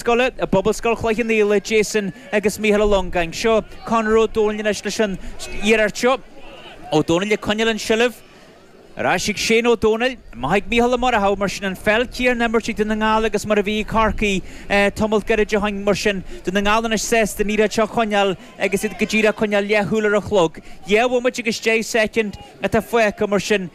Scoile i bPobalscoil Chloich Cheann Fhaola, Jason agus Mícheál Ó Longáin. Seo Conor Ó Dónaill anois leis an iarracht seo. Ó Dónaill ag coinneáil an tseilbh. Ar ais ag Shane Ó Dónaill. Amach ag Mícheál Ó Muireadhach. Mar sin an pheil chéanna á himirt ag Dún na nGall agus mar a bhí ag Corcaigh tamalt gairid ó shin. Mar sin, Dún na nGall anois sásta an liathróid seo a choinneáil agus iad go díreach ag coinneáil leathshúil ar an chlog. Dhá bhomaite agus deich soicind atá fágtha. Mar sin.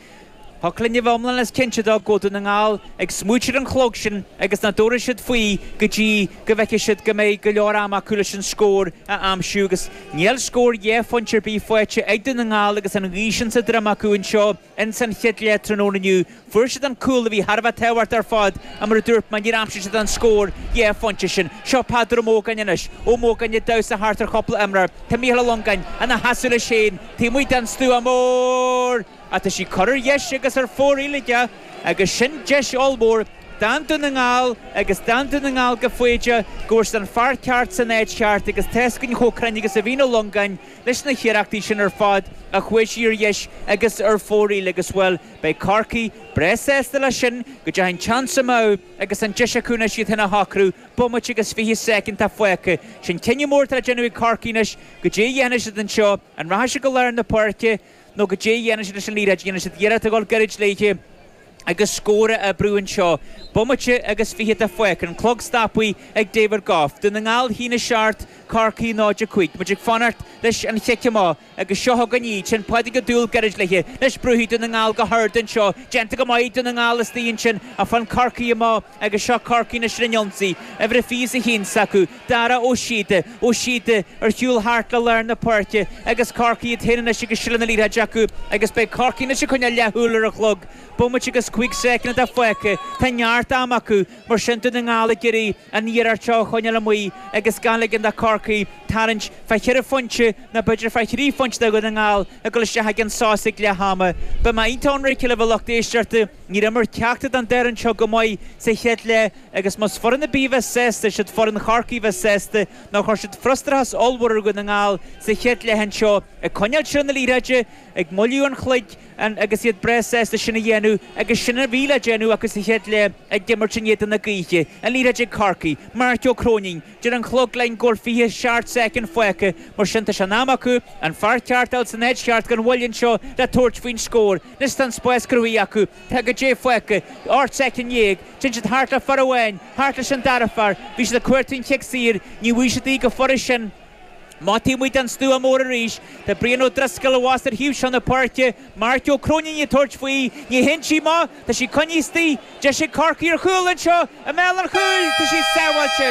Tá cuma air go hiomlán is cinnte de go bhfuil Dún na nGall ag smaoiteamh ar an chlog sin agus nach dtabharfaidh siad faoi go dtí go bhfeicfidh siad go mbeidh go leor ama acu leis an scór a aimsiú agus níl scór dhá phointe ar bith faighte ag Dún na nGall agus an ghaoth sin sa droim acu anseo ins an chéad leath tráthnóna inniu. Fuair siad an cúl a bhí thar a bheith tábhachtach ar fad ach mar a dúirt mé níor aimsigh siad an scór dhá phointe sin. Seo Peadar Ó Mógáin anois. Ó Mógáin ag damhsa thart ar chúpla imreoir. Tá Micheál Ó Longáin ina sheasamh leis féin taobh amuigh den stua mór. Ach tá sí curtha ar dheis agus ar fóraoil aige agus sin deis ollmhór d'fhan Dún na nGall agus d'fhan Dún na nGall go foighdeach go bhfuair siad an fear ceart san áit cheart agus tá's againn chomh cruinn agus a bhíonn Ó Longáin leis na hiarrachtaí sin ar fad ach chuaigh sí ar dheis agus ar fóraoil agus bhuel beidh Corcaigh breá sásta leis sin go ndeachaigh an iarracht sin amach agus an deis acu anois iad féin a shocrú bomaite agus fiche soicind atá fágtha sin cinneadh mór atá le déanamh ag Corcaigh anois caidé a dhéanfaidh siad anseo an rachaidh sí go lár na páirce nó caidé a dhéanfaidh siad leis an liathróid, an ndéanfaidh siad iarracht a dhul gairid léithe agus scór a oibriú anseo. Bomaite agus fiche atá fágtha, an clog stoptha ag David Gough. Dún na nGall a haon a seacht, Corcaigh 0, 5. Muid ag fanacht leis an chic amach agus seo againn í. Téann Pádraig Ó Dúill gairid léithe, níor bhrúigh Dún na nGall go hard anseo. Déanta go maith ag Dún na nGall isteach ansin, ach faigheann Corcaigh amach agus seo Corcaigh anois ar an ionsaí. Uimhir a 21 s'acu. Dara Ó Síoda, Ó Síoda, ar shiúl thart le lár na páirce agus Corcaigh iad féin anois agus seilbh na liathróide acu agus beidh Corcaigh anois ag coinneáil leathshúil ar an chlog. Bomaite agus cúig soicind atá fágtha. Tá neart ama acu, mar sin, Dún na nGall ag iarraidh an liathróid seo a choinneáil amuigh agus gan ligean do Chorcaigh tarraingt fá cheithre phointe nó b'fhéidir fá thrí phointe do Dhún na nGall ag dul isteach ag an sos ag leath ama. Beidh mé iontach ionraic libh a lucht éisteachta, níor imir ceachtar den dá fhoireann anseo go maith sa chéad leath, Agus más foireann ar bith a bheas sásta, is iad foireann Chorcaí a bheas sásta, nó chuir siad frustrachas ollmhór ar Dhún na nGall sa chéad leath anseo, ag coinneáil seilbh na liathróide, ag moilliú an chloig, agus iad breá sásta sin a dhéanamh agus sin a bhí le déanamh acu sa chéad leath ag imirt in éadan na gaoithe, an liathróid ag Corcaigh, Marc Ó Cróinín, deir an chlog linn go bhfuil 20 seacht soicind fágtha, mar sin tá sé in am acu an fear ceart a fháil san áit cheart gan mhoill anseo le tabhairt faoin scór, anois tá an spás cruthaithe acu. Tá caidé fágtha, ocht soicind déag, Téann siad thart le fear amháin, thart leis an dara fear, bhí siad ag cuartú an chic saor, ní bhfuair siad í go furast ansin. Amach taobh amuigh den stua mór arís, tá Brian Ó Drisceoil abhus ar thaobh seo na páirce, Marc Ó Cróinín ag tabhairt faoi, ní théann sí amach, tá sí coinnithe istigh, deis ag Corcaigh ar chúl anseo, i mbéal an chúil, tá sí sábháilte.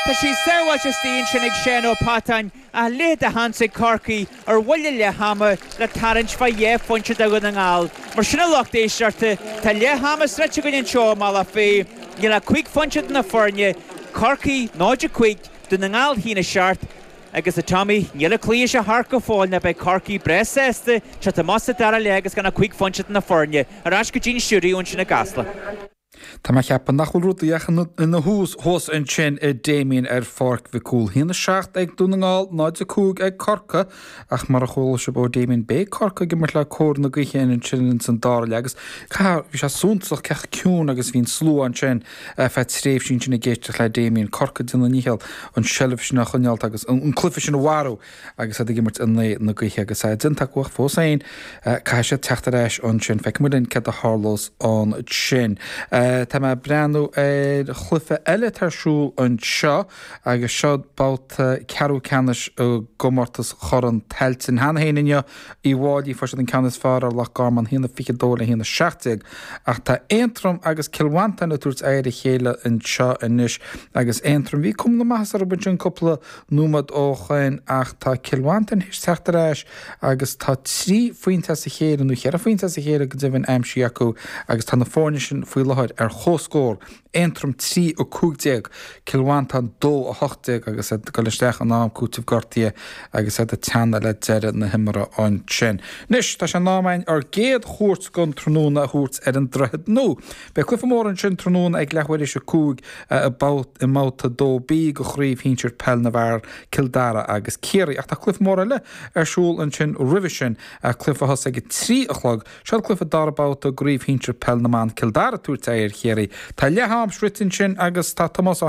Tá sí sábháilte, istigh ansin ag Seán Ó Peatáin. A leithéid de sheans ag Corcaigh ar bhuille leath ama le tarraingt fá dhá phointe do Dhún na nGall. Mar sin a lucht éisteachta, tá leath ama sroichte againn anseo i mBealach Féich. Níl ach cúig phointe idir na foirne, Corcaigh 0, 5, Dún na nGall 1, 7, agus, a Tommy, níl an cluiche seo thart go fóill nó beidh Corcaigh breá sásta teacht amach sa dara leath agus gan ach cúig phointe idir na foirne. Ar ais go dtí'n stiúideo ansin i gCasla. Tá mé a cheapadh nach bhfuil rudaí ach ina thús fós ansin, a Damien, ar Pháirc Mhic Cumhaill, 1, 7 ag Dún na nGall, 0, 5 ag Corcaigh, ach mar a chuala sibh ó Damien, beidh Corcaigh ag imirt le cóir na gaoithe ansin ins an dara leath agus caithfidh mé a rá, bhí sé suntasach cé chomh ciúin agus a bhí an slua ansin ar feadh tréimhsí ansin ag éisteacht le Damien, Corcaigh ag déanamh a ndícheall an tseilbh sin a choinneáilt agus an cluiche sin a mharú. agus iad ag imirt in aghaidh na gaoithe agus é déanta acu ach fós féin caithfidh siad teacht ar ais ansin. Feicfimid linn céard a tharlós ansin. Tá mé ag breathnú ar chluife eile atá ar siúl anseo agus seo babhta ceathrú ceannais i gcomórtas Chorn Tailteann. Cheana féin inniu Uíbh Fhailí fuair siad an ceann is fearr ar Loch Garman, haon a fiche dó le haon a seacht déag, ach tá Aontroim agus Cill Mhantáin ag tabhairt aghaidh ar a chéile anseo anois agus Aontroim bhí cuma na maitheasa orthu ansin cúpla nóiméad ó shoin ach tá Cill Mhantáin théis teacht ar ais agus tá trí phointe as a chéile, nó cheithre phointe as a chéile go deimhin, aimsithe acu agus tá na foirne sin faoi láthair ar chomhscór, Aontroim 3, 15, Cill Mhantáin 2, 18 agus iad ag dul isteach in am cúitimh gortaithe agus iad ag teannadh le deireadh na himeartha ansin. Anois, tá sé in am againn ár gcéad chuairt den tráthnóna a thabhairt ar an Droichead Nua. Beidh Cluiche Mór ansin tráthnóna ag leathuair théis a cúig i mBabhta 2B de Chraobh Shinsir Peil na bhFear, Cill Dara agus Ciarraí, ach tá cluiche mór eile ar siúl ansin roimhe sin, cluiche a thosaigh ag a trí a chlog. Seo cluiche dara babhta de Chraobh Shinsir Peil na mBan, Cill Dara ag tabhairt aghaidh ar Chiarraí. Tá leath-am sroichte ansin agus tá Tomás Ó.